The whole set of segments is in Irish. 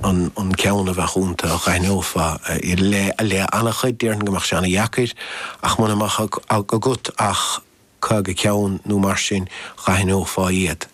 an ceann a bheadh ionta a dh'aithneofá le an-chuid. Déarfainn go mbeadh sé an-deacair ach muna mbeadh agat ach caoga ceann nó mar sin, dh'aithneofá iad.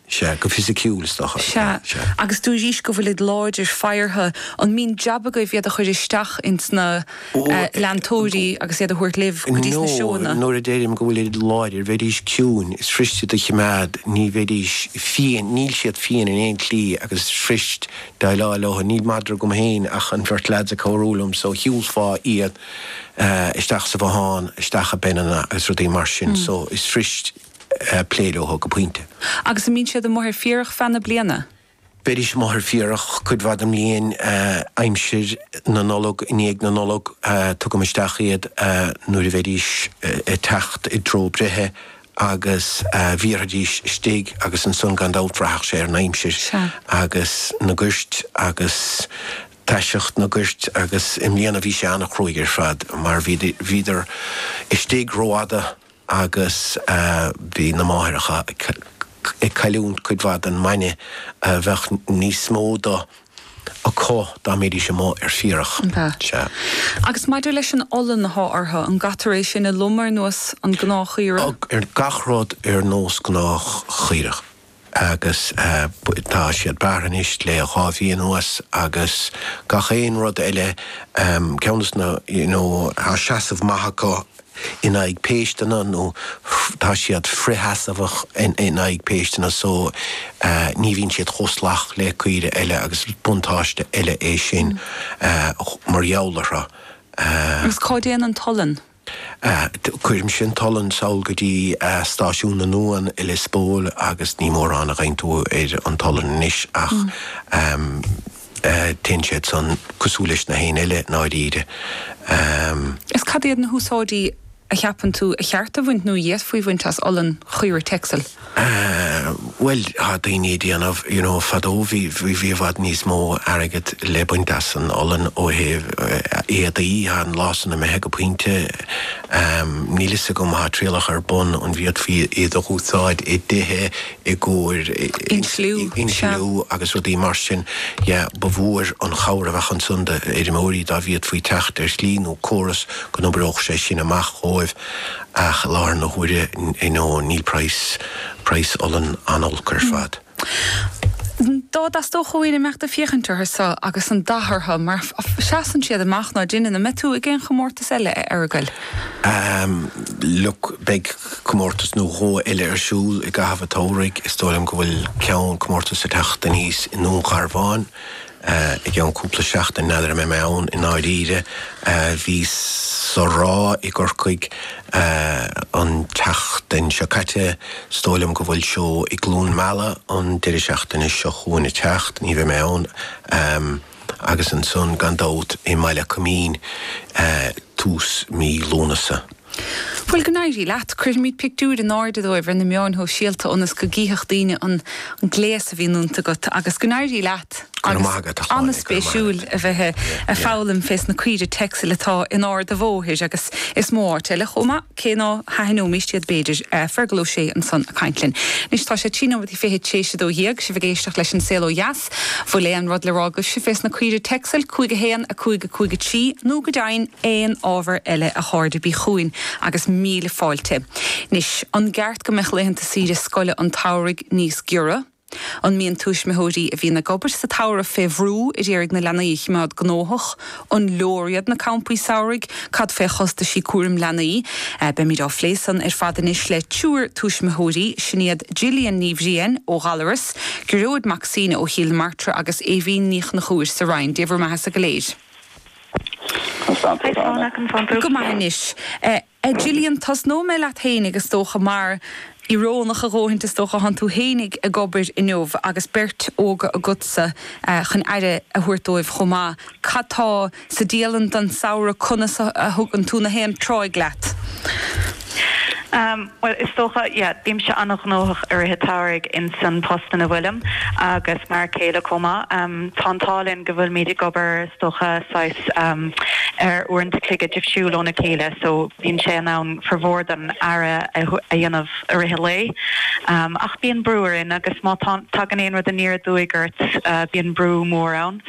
Sea, go fisiciúil is dócha. Sea. Sea. Agus dúirís go bhfuilid láidir, faghartha. An mbíonn jab agaibh iad a chuir isteach ins na. ó leantóirí agus iad a thabhairt libh go dtí na seóanna? Nuair a deirim go bhfuilid láidir, bheidís ciúin, is fuirist iad a chimeád, ní bheidís fiain, níl siad fiain in aon tslí agus is fuiriste deighleáil leo. Níl madra agam féin ach an bheirt lads ag cabhrú liom so shiúlfá iad isteach sa bhothán, isteach i bpeineanna agus rudaí mar sin so is fuiriste plé leo go pointe. Agus an mbíonn siad amuigh ar féarach feadh na bliana? Bheidís amuigh ar féarach cuid mhaith den mbliain, aimsir na Nollag, i ndiaidh na Nollag tugaim isteach iad nuair a bheidís ag teacht i dtreo breithe agus bhéarfaidís istigh agus ansan gan dabht bhraithfeadh sé ar an aimsir agus na goirt agus taiseacht na goirt agus i mbliana bhí sé an-chruaidh ar fad mar bhíodar istigh rófhada agus bhí na máithreacha ag cailliúint cuid mhaith den mbainne a bheadh níos mó do acu dá mbídís amuigh ar féarach. Sea. Agus maidir leis an olann athá orthu, an gcaitear é sin a lomadh ar nós an gnáthchaorach? Gach rud ar nós gnáthchaorach. agus tá siad bearrtha anois le dhá mhí anuas agus gach aon rud eile, ceann de na, you know, tá seasamh maith acu in aghaidh péisteanna nó tá siad frithsheasmhach in aghaidh péisteanna so ní bhíonn siad chomh salach le caoire eile agus is buntáiste eile é sin mar gheall orthu. Agus cá dtéann an t-olann? Cuirimse an t-olann sall go dtí stáisiún na n-uan i Lios Póil agus ní mórán a gheibheann tú ar an t-olann anois ach téann siad san cosúil leis na héinne eile i ndáiríre. Is cad iad na húsáidí a cheapann tú ba cheart a bhaint nó a d'fhéadfaí bhaint as olann Chaoire Texel? Bhuel tá daoine ag déanamh, you know, fadó bhí, bhí, bhí i bhfad níos mó airgead le baint as an olann ó thaobh éadaí, tá an lá san imithe go pointe. Níl 'fhios agam, tá trialacha ar bun an bhféadfaí iad a úsáid i dtithe i gcomhair Insliú, sea. insliú agus rudaí mar sin. Yeah, ba mhór an chabhair a bheadh ansan d'fheirmeoirí dá bhféadfaí teacht ar shlí nó córas go n-oibreodh sé sin amach dhóibh. Ach láthair na huaire I know níl praghas praghas olann an-olc ar fad. Dá dteastódh uainn imeacht ag féachaint orthu so agus an dath orthu mar seasann siad amach ná deineann? An mbeidh tú ag aon chomórtas eile a Fhearghail? Ehm look beidh comórtas nó dhó eile ar siúl i gcaitheamh an tsamhraidh is dóigh liom go bhfuil ceann comórtas ag teacht aníos i nDún Garbhán I gceann cúpla seachtain, n'fheadar an mbeidh mé ann i ndáiríre. Bhíos sa Ráth i gCorcaigh an tseachtain seo caite. Is dóigh liom go bhfuil seó i gCluain Meala an deireadh seachtaine seo chugainn ag teacht, ní bheidh mé ann. Agus ansan gan dabht i mBaile Coimín tús mí Lúnasa. Bhuel, go n-éirí leat. Cuirfimid pictiúir in airde dóibh ar na meáin shóisialta ionas go gcífeadh daoine an gléas a bhíonn iontu agat. Agus go n-éirí leat. Go raibh maith agat, a Shláine. Go raibh maith agat. Yeah, yeah. Agus an-spéisiúil a bheith ag foghlaim fés na caoirigh Texel atá in Ard a' Bhóthair agus is mó áit eile chomh maith, cé ná haithneoimíst iad b'fhéidir. Fergal Ó Sé ansan a' caint linn. Anois tá sé trí nóiméad is fiche tar éis a dó dhéag. Sibh ag éisteacht leis An Saol Ó Dheas. Bhfuil aon rud le rá agaibhse fés na caoirigh Texel 5 1 5 5 3 nó go deimhin aon ábhar eile a chairde bí chugainn agus míle fáilte Anois an gceart go mbeadh laethanta saoire scoile an tsamhraidh níos giorra? An mbíonn tuismitheoirí a bhíonn ag obair sa tsamhradh fé bhrú a d'iarraidh na leanaí a chimeád gnóthach An leor iad na campaí samhraidh? Cad faoi chostaisí cúraim leanaí? Beimid á phlé san ar fad anois le triúir tuismitheoirí, sin iad Gillian Ní Bhriain ó Ghallarus, Gearóid Mac Suibhne ó Chill na Martra agus Aoibhín Ní Chonchúir sa Rinn. Dé bhur mbeathasa go léir. Go maith anois. A Gillian, tosnóidh mé leat fhéinig is dócha mar, iorónach a dhóthaint is dócha, thánn tú fhéinig ag obair inniu agus beirt óga agatsa chun aire a thabhairt dóibh chomh maith. Cad tá sa dialann don samhradh conas a thugann tú nach aon tráigh leat? Bhuel is dócha, yeah, bímse an-ghnóthach i rith an tsamhraidh insan post ina bhfuilim agus m'fhear céile chomh maith. Tá an t-ádh linn go bhfuilimid ag obair dócha saghas ar uaireanta a chloig difriúil óna chéile so bíonn sé in ann formhór don aire a dhéanamh i rith an lae ach bíonn brú orainn agus má tagann aon rud aniar aduaidh ort bíonn brú mór ann.